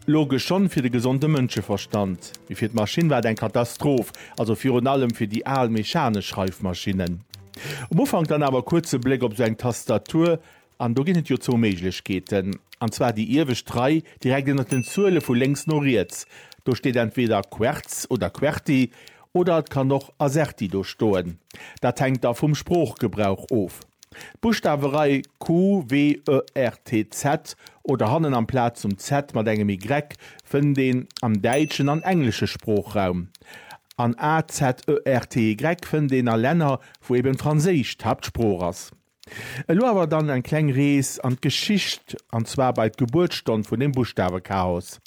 Logesch schonn fir de gesonde Mënscheverstand, mee fir d'Maschinn war et eng Katastroph, also virun allem fir déi al mechanesch Schreifmaschinnen. Um Ufank dann awer kuerz e Bléck op sou eng Tastatur, an do ginn et jo zwou Méiglechkeeten, an zwar déi iewescht Rei direkt ënnert den Zuele vu lénks no riets, do steet entweder Quertz oder Querti, oder et kann och Azerty do stoen, dat hänkt da vum Sproochgebrauch of. D'Buschtawerei QWERTZ oder hannen amplaz zum Z mat engem Y fënnt een am däitschen an englesche Sproochraum. An AZERTY fënnt een a Länner, wou eben Franséisch d'Haaptsprooch ass. Elo awer dann eng kleng Rees an d'Geschicht, an zwar bei d'Gebuertsstonn vun dem Buschtawechaos.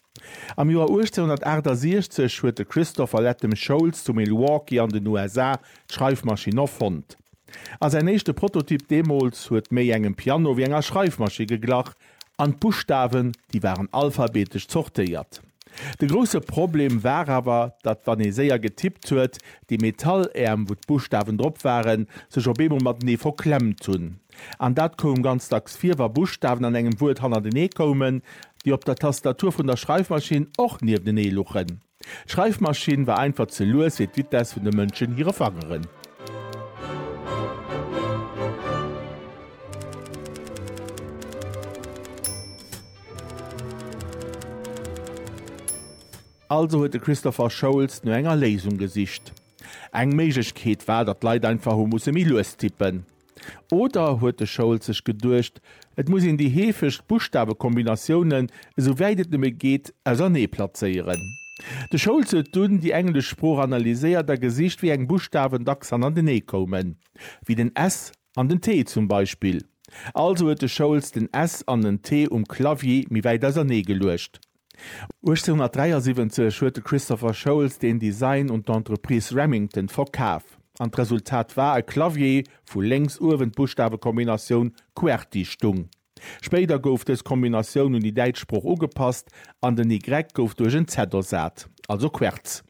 Am Joer 1868 huet de Christopher Latham Sholes zu Milwaukee an den USA d'Schreifmaschinn erfonnt. A säin éischte Prototyp deemools huet méi engem Piano wéi enger Schreifmaschi geglach, an d'Buschtawen, déi waren alphabetesch zortéiert. De grousse Problem war awer, datt wann ee séier getippt huet, déi Metalläerm, wou d'Buschtawen drop waren, sech op eemol matenee verklemmt hunn. An dat koum ganz dacks vir, wa Buschtawen an engem Wuert hannertenee koumen, déi op der Tastatur vun der Schreifmaschinn och nieftenee luchen. D'Schreifmaschinn war einfach ze lues fir d'Vitesse vun de Mënschen hire Fangeren. Also huet de Christopher Sholes no enger Léisung gesicht. Eng Méiglechkeet war, datt d'Leit einfach hu musse méi lues tippen. Oder huet de Schoulz sech geduecht, et muss een déi heefegst Buschtawekombinatiounen, esou wäit et nëmme geet, ausernee plazéieren? De Schoulz huet dunn déi englesch Sprooch analyséiert a gesicht, wéi eng Buschtawen dacks hannendernee koumen, wéi den S an den T zum Beispill. Also huet de Schoulz den S an den T um Clavier méi wäit ausernee geluecht. 1873 huet de Christopher Sholes den Design un d'Entreprise Remington verkaf, an d'Resultat war e Clavier, wou lénks uewen d'Buschtawekombinatioun Qwerty stung. Spéider gouf dës Kombinatioun un déi däitsch Sprooch ugepasst, an den Y gouf duerch en Z ersat, also Querz.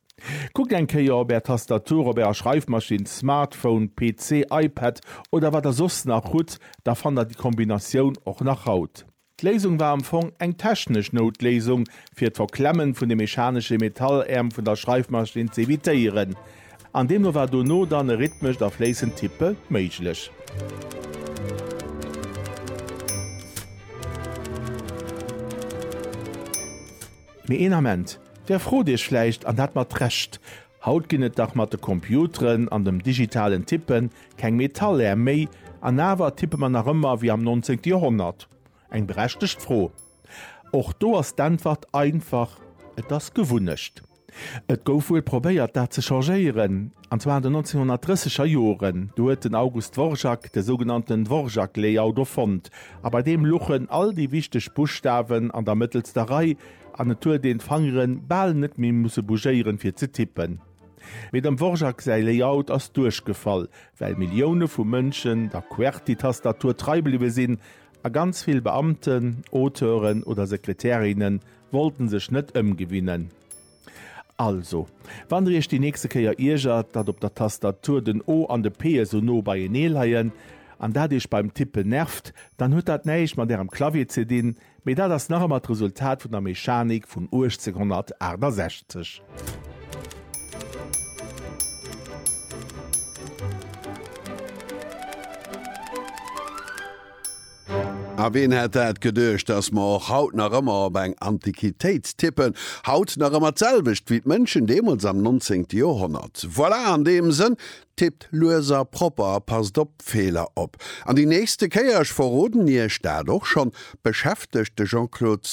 Kuckt eng Kéier op Är Tastatur, op Ärer Schreifmaschinn, Smartphone, PC, iPad oder wat Der soss nach hutt, da fannt Der déi Kombinatioun och nach haut. D'Léisung war am Fong eng technesch Noutléisung, fir d'Verklemmen vun de mechanesche Metalläerm vun der Schreifmaschinn ze evitéieren. An deemno war dono dann e rhythmescht a fléissend Tippe méiglech. Mee een Ament, Der frot Iech vläicht, an dat mat Recht, Haut ginn et dach mat de Computeren an dem digitalen Tippen Keng Metallär méi, an awer tippe mer nach ëmmer wéi am 19. Joerhonnert? Eng berechtegt Fro. Och do ass d'Äntwert einfach, Et ass Gewunnecht. Et gouf wuel probéiert, dat ze changéieren, an zwar an den 1930 er Joren. Do huet den August Dvorak de sougenannten Dvorak-Layout erfonnt, a bei deem luchen all déi wichteg Buschtawen an der mëttelster Rei, an et huet een d'Fangeren bal net méi musse bougéieren, fir ze tippen. Mee dem Dvorak säi Layout ass duerchgefall, well Millioune vu Mënschen der Qwerty-Tastatur trei bliwwe sinn, a ganz vill Beamten, Auteuren oder Sekretärinne wollten sech net ëmgewinnen. Also, wann der iech déi nächste Kéier iergert, datt op der Tastatur den O an de P esou no beienee leien, an dat iech beim Tippen nervt, dann huet dat näischt mat ärem Clavier ze dinn, Mee dat ass nach ëmmer d'Resultat vun der Mechanik vun 1868. A ween hätt dat geduecht, dass mer och haut nach ëmmer op eng Antiquitéit tippen? Haut nach ëmmer d'selwecht wéi d'Mënschen deemools am 19. Joerhonnert? Voilà, an deem Sënn, Tippt lues a propper a passt op Feeler op. An déi nächste Kéier, ech verroden Iech dat och schonn, beschäftegt de Jean-Claude.